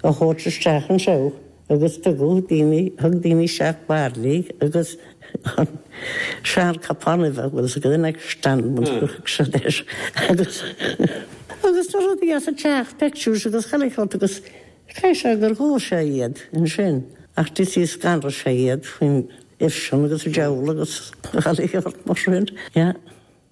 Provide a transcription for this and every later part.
a thabhairt isteach anseo agus tugadh daoine, thug daoine isteach bairillí agus an seanchupán uibhe an bhfuil sé i gcuimhne ag Stan Bhn Chuaigh siad air agus agus na rudaí as an teach, pictures agus chuile shórt agus caithfidh sé gur dhóigh sé iad ansin ach tá's agat scanraigh sé iad faoin ifreann agus an deabhal agus chuile shórt mar sin, yeah.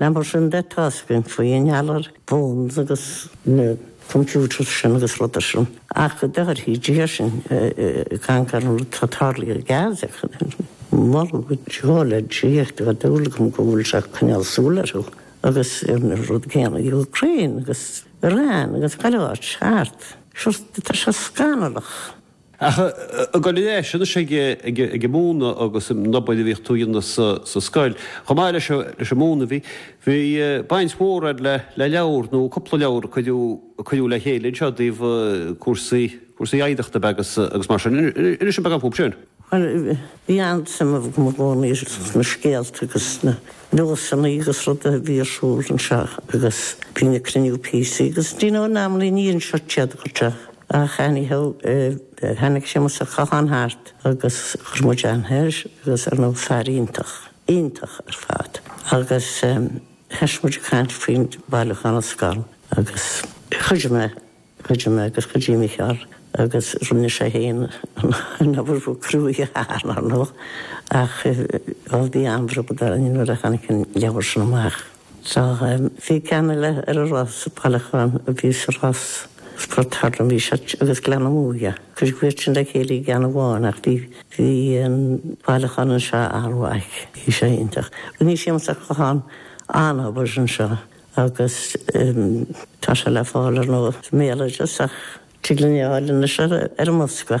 Ná mar sin de atá sé imní faoi i ngeall ar phones agus na computers sin agus rudaí sin. Ach go dtarrthaí Dia sinn ag caint ar an rud atá tarlaithe i Gaza. Moladh go deo le Dia go bhfuil súil agam go bhfuil sé ag coinneáil súil orthu agus ar an rud céanna i Ukraine agus Iran agus chuile áit. Ceart. Sure, tá sé scannalach. Ach i gcomhthreo leis anois ag an múineadh agus an obair a bhíodh tú a dhéanamh sa scoil. Chomh maith leis an múineadh bhí bhí baint mhór agat le leabhair nó cúpla leabhar a cuireadh cuireadh le chéile anseo i dtaobh cúrsaí cúrsaí oidhreachta an bhaile agus mar sin. Inis dom beagán faoi sin. Bhí an-suim agam i gcónaí ar na scéalta agus na nósanna agus rudaí a bhí ar siúl anseo agus bhínn ag cruinniú píosaí agus do you know normally ní anseo tada go deo ach anyhow tháinig Séamus Ó Catháin thart agus chuir muid an-aithne air agus ar ndóigh fear iontach, iontach ar fad agus thoisigh muid ag caint faoin bhailiúchán na scol agus chuidigh mé. Chuidigh mé agus chuidigh Micheál agus rinne sé fhéin an obair ba chruaidhe ar ndóigh ach bhí an-bhród orainn nuair a tháinig an leabhar sin amach. Tá's agat bhí ceann eile ar an Ros, an bailiúchán a bhí sa Ros, Port Durlainne bhí sé agus Gleann na Muaidhe. Cuireadh iad sin le chéile i gceann amháin ach bhí an bailiúchán anseo an-mhaith. Bhí sé iontach. Rinne Séamus Ó Catháin an-obair anseo. agus tá sé le fáil ar an mBéaloideas ach tig linn é a fháil anois ar an mbosca.